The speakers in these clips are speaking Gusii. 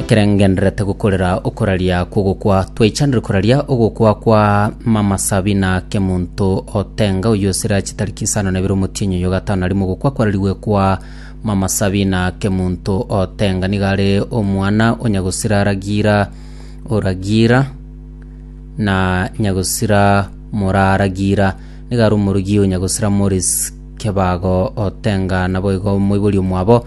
Ekero ngendererete gokorera okoraria kw'ogokwa, twaichanire koraria ogokwa kwa Mama Sabina Kemonto Otenga, oyio osire ache tariki isano na ibere omotienyi oyo gatano na rimo. Ogokwa kwararigwe kwa Mama Sabina Kemonto Otenga nigo are omwana o Nyagosira Ragira Oragira na Nyagosira Moraa Ragira. Nigo are omorogi o Nyagosira Maurice Kebago Otenga, naboigo omoibori omwabo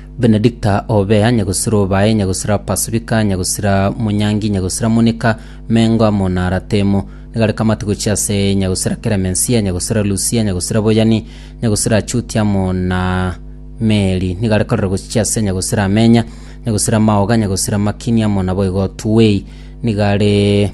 Benedicta Obea, Nyagosira Obae, Nyagosira Pasifika, Nyagosira Munyangi, Nyagosira Monika, Mengo amo na Aratemo. Nigare kamate gochia ase Nyagosira Keremensia, Nyagosira Lusia, Nyagosira Boyani, Nyagosira Achuti amo na Meri. Nigare korora gochia ase Nyagosira Amenya, Nyagosira Maoga, Nyagosira Makini amo naboigo Tuwei. Nigare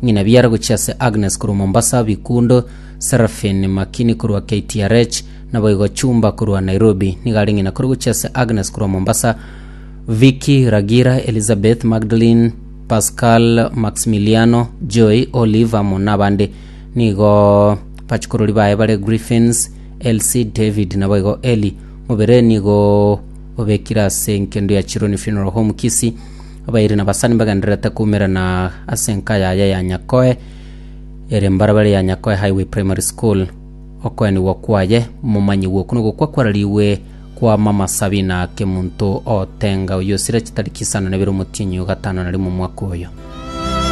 ng'ina biara gochia ase Agnes korwa Mombasa, Bikundo, Seraphine Makini korwa KTRH, Naboigo chumba korwa Nairobi nigo are ng'ina kore gochia ase Agnes korwa Mombasa, Vicky, Ragira, Elizabeth, Magdalene, Pascal, Maximiliano, Joy, Olive amo nabande. Nigo bachukorori baye bare Griffins, Elsie, David naboigo Eli. Mobere nigo obekire ase nkendo ya Chironi Funeral Home Kisii. Abairi na basani bagendererete koumerana ase enka yaye ya Nyakoe ere mbarabara ya Nyakoe Highway Primary School. Okoenigwa kwaye momanyigwe okwo nogokwa kwararigwe kw'amamasabi na kemunto otenga oyosira chitari chisano nebere omotienyi o gatano na rimo omwaka oyo.